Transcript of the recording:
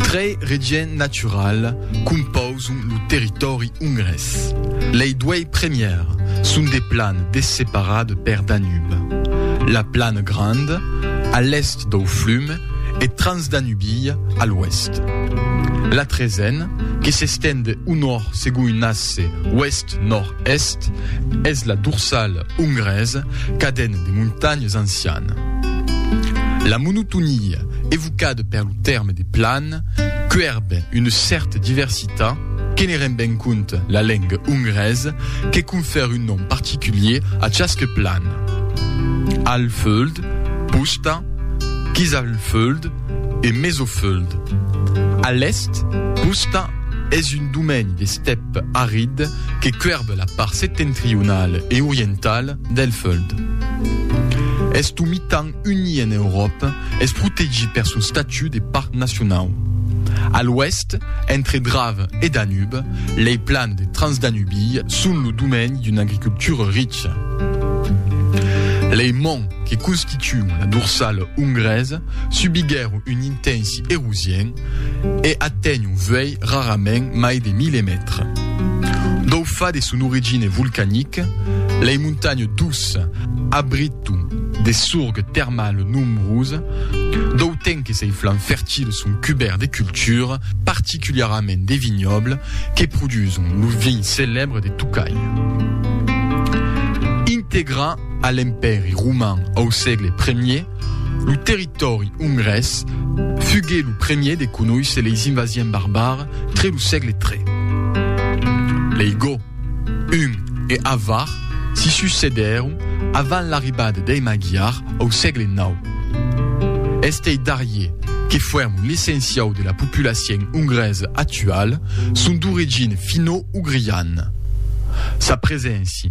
Trei regions naturals compauson lo territòri ongrés. Lei duei premiers son de plans desseparats per Danube, la Plana Granda, a l'èst dau flum, e Transdanubia, a l'oèst. La Tresen, que s'estend au nòrd segon un asse oèst-nòrd, Est, es la dorsal ongrés caden de montanhas ancian. La monotonia evocada per lo tèrme de plan quèrbe una cèrta diversitat que ne ren ben compte la lenga ongrés que confère un nom particulier a chasque plan, Alföld, Puszta, Kisalföld e Mezoföld. A l'èst, Puszta es un domeni d'estèp arid, que cuèrb la part setentrional e oriental del Fuld. Eth omitan unir en Euròpa es protegit per son statut de parc nacionau. A l'oèst, entre Drave e Danube, lei plans de Transdanubii son lo domeni d'una agricultura richa. Lei monts que constituon la dorsala ongresa subiguèron un intensi erosien, e aténh un vuèlh rarament mai de 1.000 mètres. D'au fa de son origine volcanique, lei montanhes d'Ours abriton de sorgues termales nombroses, d'au temps que sei flancs fertiles son cubèrts de cultures, particuliarament de vignobles, que produson lo vin celèbre de Tocai. Integrat a l'Empèri roman au sègle I, Lo territòri ongrés fugué lo premier de conoisser leis invasiens barbares tre lo sègle ii. Lei goths, huns e avar s'i succedèron avant l'arribada dei Magyars au sègle ix. Estei darrier, que fuèron l'essenciau de la populacion ongresa actuala, son d'origina finno-ugriana. Sa preséncia